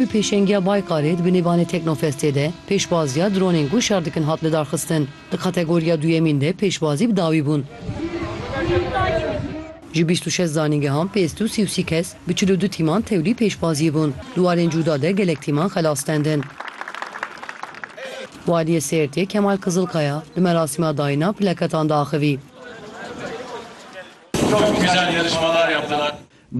Bi pêşengiya Baykarê di binê Bane Teknofestê de pêşbaziya dronên ku şer dikin hat lidarxistin. Di kategoriya duyemîn de pêşbazî bi dawî bûn. Ji bîst û şeş zanîngehan pêz tu sî û sî kes bi çil û du tîman tevlî pêşbaziyê bûn. Di warên cûda de gelek tîman xelas stendin. Waliyê Sêrtê Kemal Kizilkaya di merasîma dayîna plaketan diaxivî.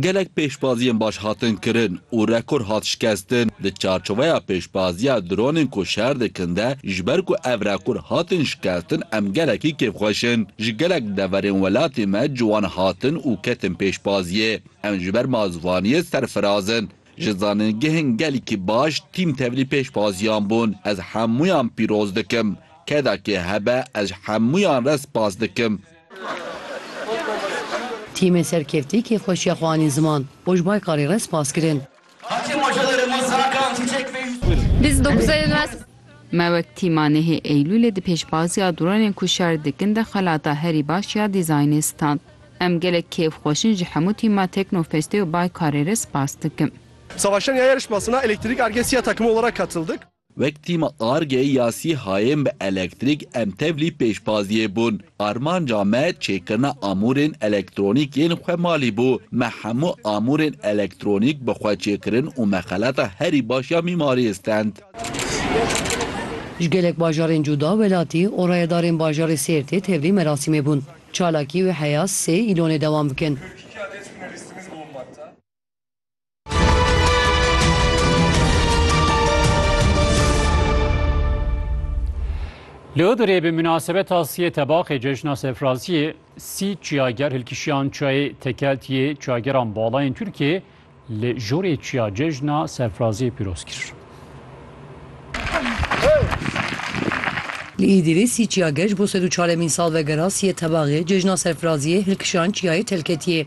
Gelek pêşbaziyên baş hatin kirin û rekor hat şikestin di çarçoveya pêşbaziya dronên ku şer dikin de, ji ber ku ev rekor hatin şikestin em gelekî kêfxweş in. Ji gelek deverên welatê me ciwan hatin û ketin pêşbaziyê. Em ji ber ma zivaniyê serfiraz in. Ji zanîngehên gelkî baş tîm tevlî pêşbaziyan bûn. Ez hemûyan pîroz dikim. Kedakê hebe ez ji hemûyan re spas dikim. Tîmên serkevtî kêfxweşiya xwe anîn ziman û ji Baykalê re spas kirin. Me wek tîma nehê Eylûlê di pêşbaziya dronên ku şer dikin de xelata herî baş ya dîzaynê stand. Em gelek kêf xweş in ji hemû tîma Teknofestê û Baykalê re spas dikim. Savaşan ya yarışmasına elektrik argesiya takımı olarak katıldık. Wek tîma argeyê ya SÝHAyên bi elektrîk em tevlî pêşbaziyê bûn. Armanca me çêkirina amûrên elektronîk yên xwe malî bû. Me hemû amûrên elektronîk bi xwe çêkirin û me xelata herî baş ya mîmariyê stend. Ji gelek bajarên cuda, welatî û rayedarên bajarê Sêrtê tevlî merasîmê bûn. Çalakî û heya sê îlonê dewam bikin. Li Idrê bi minasebeta siyê tebaxê cejna Sefraziyê sî çiyager hilkişiyan çayê tekeltiyê çiyageran balayên Tirkiyê li jorê çiya cejna Sefraziyê pîroz kir. Li Îdîrê sî çiyager ji bo sed û çaremîn sal vegera siyê tebaxê cejna Sefraziyê hilkişiyan çiyayê telketiyê.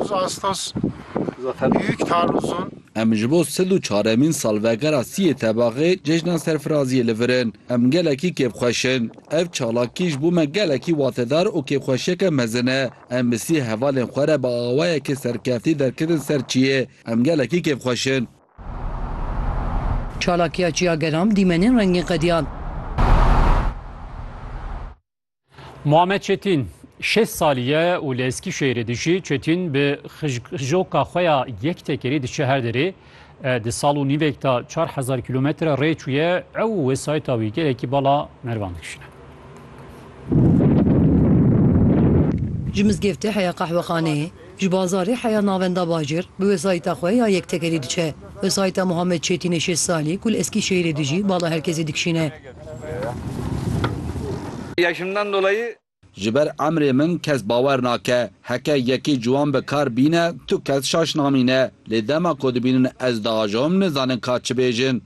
Biz astos büyük taarruzun Em ji bo sil û çaremîn salvegera siyê tebaxê cejna serfiraziyê li vir in. Em gelekî kêfxweş in. Ev çalakî ji bo me gelekî watedar û kêfxweşiyeke mezin e. Em bi siyê hevalên xwe re bi awayekî serkeftî derketin ser çiyê. Em gelekî kêfxweş in. Çalakiya Çiyageram dîmenên rengîn qediyan. Muhammed Çetin şêst salî ye û li Eskîşehîrê dijî. Çetin bi xijjoka xwe ya yek tekerî diçe her derê. Di sal û nîvek de çar hezar kîlometre rê çûye. Ew û wesayîta wî gelekî bala mervan dikişîne. Ji mizgefte heya qehwexaneyê. Ji bazarê heya navenda bajêr bi wesayîta xwe ya yektekerî diçe. Wesayîta Muhammed Çêtînê şêst salî ku li Eskîşehîrê dijî bala her kesê dikişîne. Yaşımdan dolayı. Ji ber emrê min kes bawer nake. Heke yekî ciwan bi kar bîne tu kes şaş namîne. Lê dema ku dibînin ez diajom nizanin ka çi bêjin.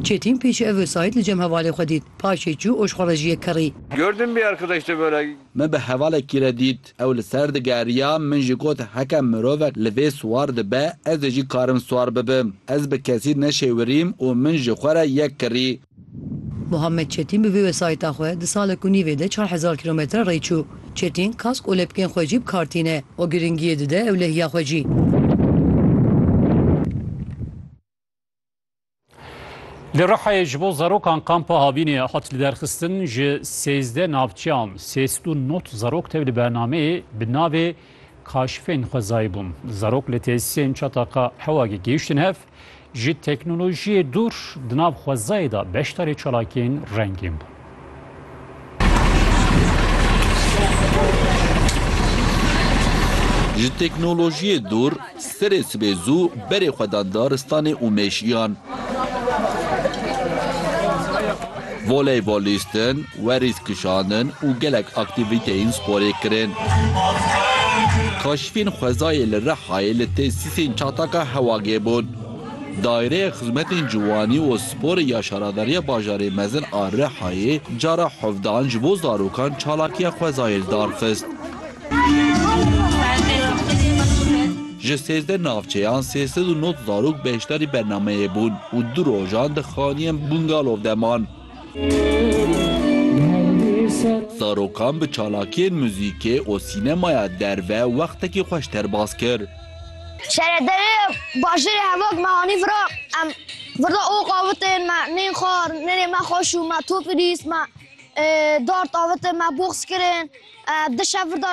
Çêtîn pêşî ev wesayît li cem hevalê xwe dît. Paşê çû û ji xwe re ji yek kerî. Gördüm bir arkadaşta böyle. Min bi hevalekî re dît. Ew li ser digeriya, min jî got heke mirovek li vê siwar dibe, ez ê jî karim siwar bibim. Ez bi kesî neşêwirîm û min ji xwe re yek kirî. Muhammed Çêtîn bi vê wesayîta xwe di salek û nîvê de çar hezar kîlometre rê çû. Çêtîn kask û lepkên xwe jî bi kar tîne û girîngiyê dide ewlehiya xwe jî. Li Rihayê ji bo zarokan kampa Havînê hat liderxistin ji sêzdeh navçeyan sêst û not zarok tev li bernameyê bi navê kaşifên xwezayî bûn. Zarok li têsisên çataka Hewagê gihiştin hev ji teknolojiyê dûr di nav xwezayê de beşdarê çalakiyên rengîn bûn. Ji teknolojiyê dûr, serê sibê zû berê xwe dan daristanê û mêşiyan. Voleybolîstin, werîs kişandin û gelek aktîvîteyên sporê kirin. Kaşifên xwezayê li Rihayê li tesîsên Çataka Hewagê bûn. Daîreya Xizmetên Ciwanî û Sporê ya Şaradariya Bajarê Mezin a Rihayê cara hevdeh an ji bo zarokan çalakiya xwezayê darxist. Ji sêzdeh navçeyan sê sed û nod zarok beşdarî bernameyê bûn û du rojan di xaniyên bungalow de man. Zarokan bi çalakiyên muzîkê û sînemaya derve wextekî xweş derbas kir. Şaredarê bajêrê Hevok me anî vira. Em vira ok avitên me neyên xwar, nêrê me xweş û me top lîst. Me dart avitin, me box kirin. Di şev vira.